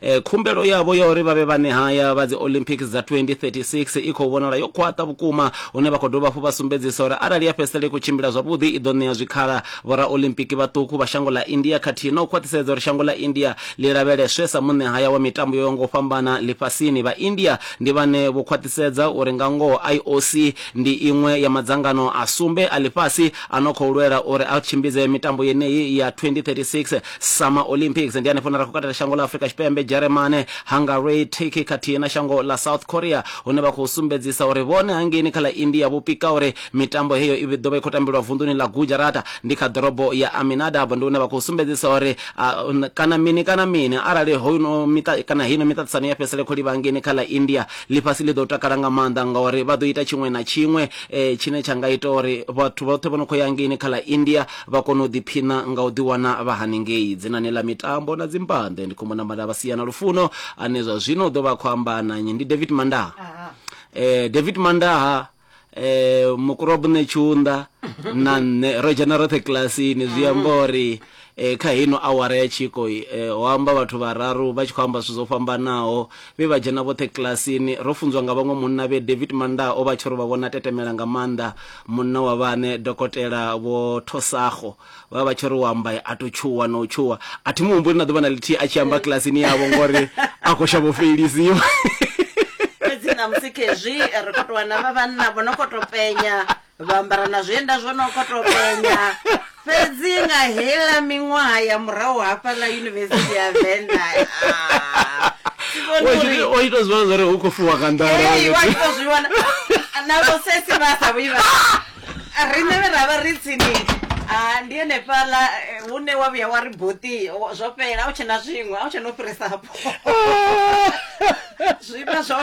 Khumbelo yavho ya uri vha vhe vhanehaya vha dzi-Olympics dza 2036 i khou vhonala yo khwaṱha vhukuma hune vha khou dovha hafhu vha sumbedzisa uri arali ya fhedzisela i khou tshimbila zwavhuḓi i ḓo ṋea zwikhala vhoraolimpiki vhaṱuku vha shango ḽa India khathihi na u khwaṱhisedza uri shango ḽa India ḽi lavheleswe sa muṋehaya wa mitambo yo yaho nga u fhambana ḽifhasini. Vha-India ndi vhane vho khwaṱhisedza uri nga ngoho IOC ndi iṅwe ya madzangano a sumbe a ḽifhasi a no khou lwela uri a tshimbidze mitambo yeneyi ya 2036 summer olympics ndi hanefho na ra khou katela shango ḽa afurika tshipembe dzheremane hungary turkey khathihi na shango ḽa south korea hune vha khou sumbedzisa uri vhone hangeini kha ḽa india vho pika uri mitambo heyo i ḓo vha i khou tambelwa vunḓuni ḽa gujarata ndi kha ḓorobo ya aminadab ndi hune vha khou sumbedzisa uri kana mini kana mini arali hono miṱa kana heino miṱaṱisano ya fhedzisele khou livha hangeini kha ḽa india ḽifhasi ḽi ḓo takala nga maanḓa ngauri vha ḓo ita tshiṅwe na tshiṅwe tshine tsha nga ita uri vhathu vhoṱhe vho no khou ya hangeini kha ḽa india vha kona u ḓiphiṋa nga u ḓiwana vha haningei dzinani ḽa mitambo na dzimbanḓe. Ndi Khumbo Nambatela vha sia na Lufuno ane zwa zwino u ḓo vha a khou amba na nnyi. Ndi David Mandaha. Eh, David Mandaha eh mukurobune tshunḓa na nṋe ro dzhena roṱhe kilasini zwi amba uri eh, kha heino awara ya tshiko eh, ho amba vhathu vhararu vha tshi khou amba zwithu zwo fhambanaho Vhe vha dzhena vhoṱhe kilasini. Ro funzwa nga vhaṅwe munna vhe David Mandaa o vha a tshi ri vha vhona tetemela nga maanḓa. Munna wa vhaṋe, Dokotela Vho Thosakgo, vha vha vha tshi ri u amba a tou tshuwa na u tshuwa. A thi mu humbuli na ḓuvha na ḽithihi a tshi amba kilasini yavho ngori a khou shavha u feilisiwa. Fhedzi ṋamusi khezwi ri khou tou wana vha vhanna vho no khou tou penya vha ambara na zwienda zwo no kho to penya fhedzi nga hela miṅwaha ya murahu hafha ḽa yunivesithi ya venda ah, o ita zwivhona zwari u khou fuwa nga nḓalawaitozwivhona na vhosesi vha sa vhuyi vha riṋe vhe ra vha ri tsini ah, ndi henefhaḽa eh, hune wa vhuya wa ri boti zwo fhela a u tshena zwiṅwe a u tshena u fhirisa hapo zwi vha zwo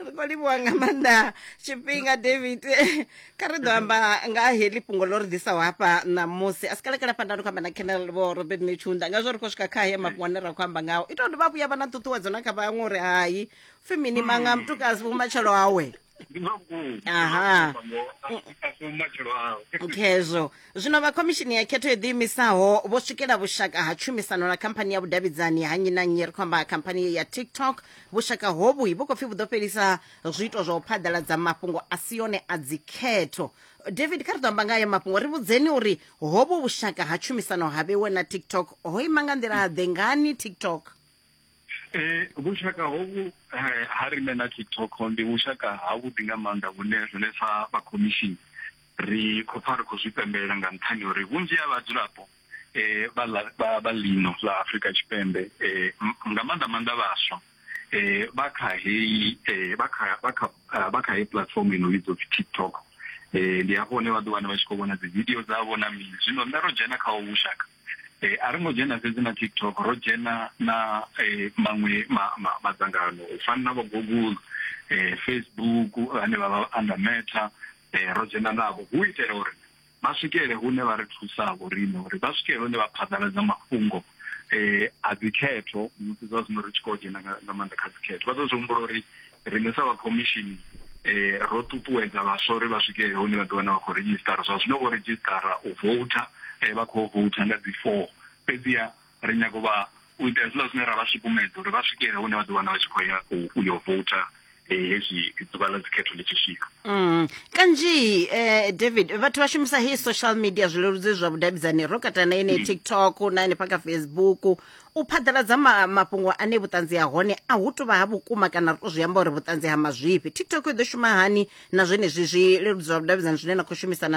ri khou livhuwa nga maanḓa tshifhinga david kha ri ḓo amba nga ha heḽi fhungo ḽo ri ḓisaho hafha ṋamusi a si kalekala fhanda ri khou amba na kenel vho robert netshunda nga zwo ri khou swika kha haya mafhungo ane ra khou amba ngao ita uri vha vhuya vha na ṱuṱuwedzo na kha vhaṅwe uri hai pfhi mini manga mutukasi vhumatshelo awe aha khezwo Zwino vha Khomishini ya Khetho yo Ḓiimisaho vho swikela vhushaka ha tshumisano na khamphani ya vhudavhidzani ha nnyi na nnyi, ri khou amba khamphani ya TikTok. Vhushaka hovhu vhu khou pfi vhu ḓo fhelisa zwiito zwa u phaḓaladza mafhungo a si one a dzikhetho. David, kha ri ḓo amba nga hayo mafhungo, ri vhudzeni uri hovhu vhushaka ha tshumisano ha vhewe na TikTok ho ima nga nḓila-ḓe, ngani TikTok? Eh, vhushaka hovhu eh, ha riṋe na tiktok ndi vhushaka havhuḓi nga maanḓa vhune riṋe sa vha khomishini ri khou pfa ri khou zwi pembelela nga nṱhani uri vhunzhi ha vhadzulapo eh, vha ḽa- vha vha ḽino ḽa afurika tshipembe eh, m- nga maanḓa maanḓa vhaswa eh, vha kha heyi eh, vha kha vha kha ah, vha kha heyi platform ino vhidzwa upfi tiktok eh, ndi hafho hune vha ḓo wana vha tshi khou vhona dzividio dzavho na mini zwino nṋe ro dzhena kha hovhu vhushaka Eh, a ri ngo dzhena fhedzi na tiktok ro dzhena na eh, maṅwe madzangano u fana na vho google eh, facebook ane vha vha anda meta ro dzhena navho hu itela uri vha swikele hune vha ri thusa vho riṋe uri vha swikele hune vha phaḓaladza mafhungo um a dzikhetho musi zwa zwino ri tshi khou dzhena nga maanḓa kha dzikhetho vha ḓo zwi humbula uri Riṋe sa vha khomishini ro ṱuṱuwedza vhaswa uri vha swike hune vha ḓi wana vha khou redzhisiṱara. Zwa zwino vho redzhisiṱara u voutha, vha khou voutha nga dzi four, fhedziha ri nyaga u vha u ita hezwiḽa zwine ra vha sukumedza uri vha swikele hune vha ḓi wana vha tshi khou ya u yo voutha hezwi ḓuvha ḽa dzikhetho ḽi tshi swika. Kanzhi David vhathu vha shumisa heyi social media zwileludzi zwa vhudavhidzani ro katela na yeneyi TikTok na hanefha kha Facebook U phaḓaladza ma, mafhungo ane vhuṱanzi ha hone a hu tou vha ha vhukuma kana ri tou zwi amba uri vhuṱanzi ha mazwifhi. TikTok i ḓo shuma hani na zwenezwi zwi leludzwa vhudavhidzani zwine na khou shumisana na